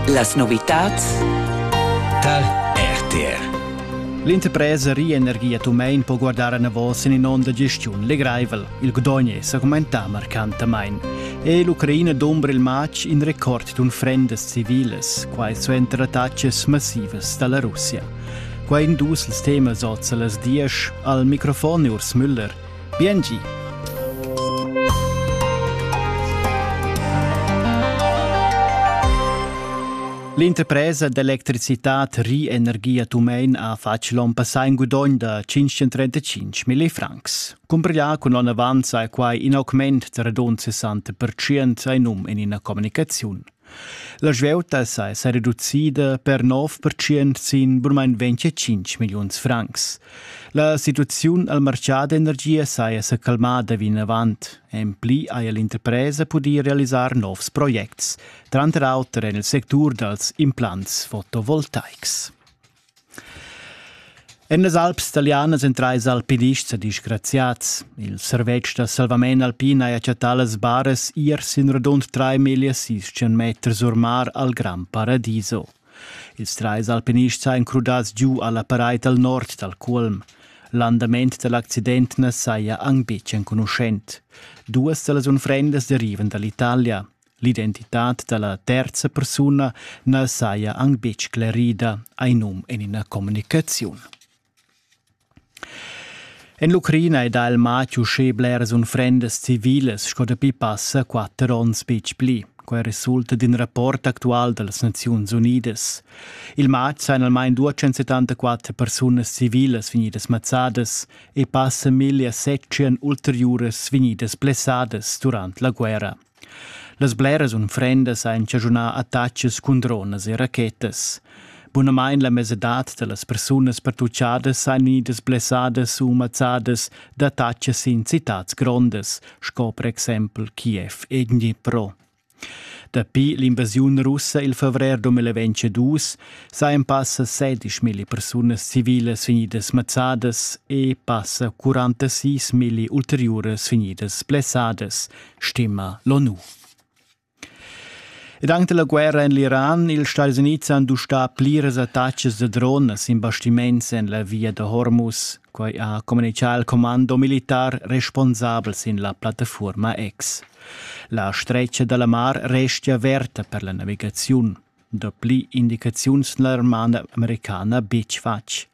Las novitads tar RTR L'interpresa Rienergie Tumein po guardar anavos en in'onda gestiun legraivel. Il Gdogn è sa commentà marcantamain. È l'Ucraina d'umbra il matg in record d'unfrendas civilas, quai suenter attaccas massivas da la Russia. Quai in dus ils temas oz a las diesch. Al microfon Urs Müller. Biengi! L'interpresa d'electricitad Rienergia Tumein ha fatg l'on passà in gudogn da 535 mille francs. Cumbrià cun l'on avant sa quai in augment da radund 60% sai num en ina communicaziun. La svieuta sa è reducida per 9% sin burmain 25 milliuns francs. La situaziun al martgà d'energia saja sa calmada vinavant. En pli haja l'interpresa pudì realisar novs projects, tranter auter en il sectur dals implants fotovoltaics. En las Alps talianas èn trais alpinists disgraziads. Il servetsch da salvament alpin ha chattà las baras ier sin radund 3.600 meters or mar al Gran Paradiso. Ils trais alpinists sajan crudads giu a la paraid al nord dal Culm. L'andament da l'accident na saja anc betg enconuschent. Duas da las unfrendas derivan da l'Italia. L'identitad da la terza persuna na saja anc betg sclerida, hai num en ina communicaziun. En l'Ucraina è dal mat uschè bleras unfrendas civilas sco dapi passa quatter onns betg pli. Quai resulta d'in rapport actual da las Naziuns Unidas. Il matg sajan almain 274 persunas civilas vegnidas mazzadas e passa 1700 ulteriuras vegnidas blessadas durant la guerra, Las bleras unfrendas han chaschunà attachis cun dronas e rachetas. Bunamain la mesadad da las persunas pertuchadas han vegnidas blessadas u mazzadas d'attachis in citats grondas, sco per exempel Kiev e Dnipro. Dapi l'invasiun russa il favrer 2022 sajan passa 16.000 persunas civilas vegnidas mazzadas e passa 46.000 ulteriuras vegnidas blessadas, stima l'ONU. Ed anche la guerra en l'Iran, ils Stati Uniti han dustà pliras attacks da drones in bastiments en la via da Hormuz, quai ha communicato il comando militar responsabel sin la piattaforma X. La stretga dalla mar restia averta per la navigaziun. Dapli indicaziuns n'ha la roman americana betg fatg.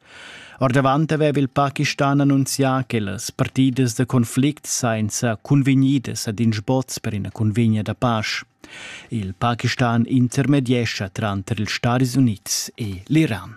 Ordavant aveva il Pakistan annunzià che las partidas da conflict sainza cunvegnidas ad in sboz per ina cunvegna da pasch. Il Pakistan intermediescha tranter ils Stadis Unids e l'Iran.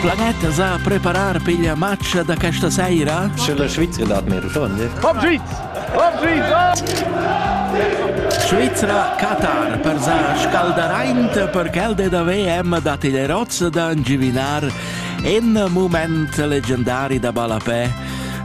Planetta sa preparar per la matcha da questa sera? Sche la Svizzera dat mir schon. Vom Sviz! Vom Sviz! Svizzera Qatar per sa scalderaint per quel de da VM da Tilerozza da giuvinar en mument legendari da ballapè.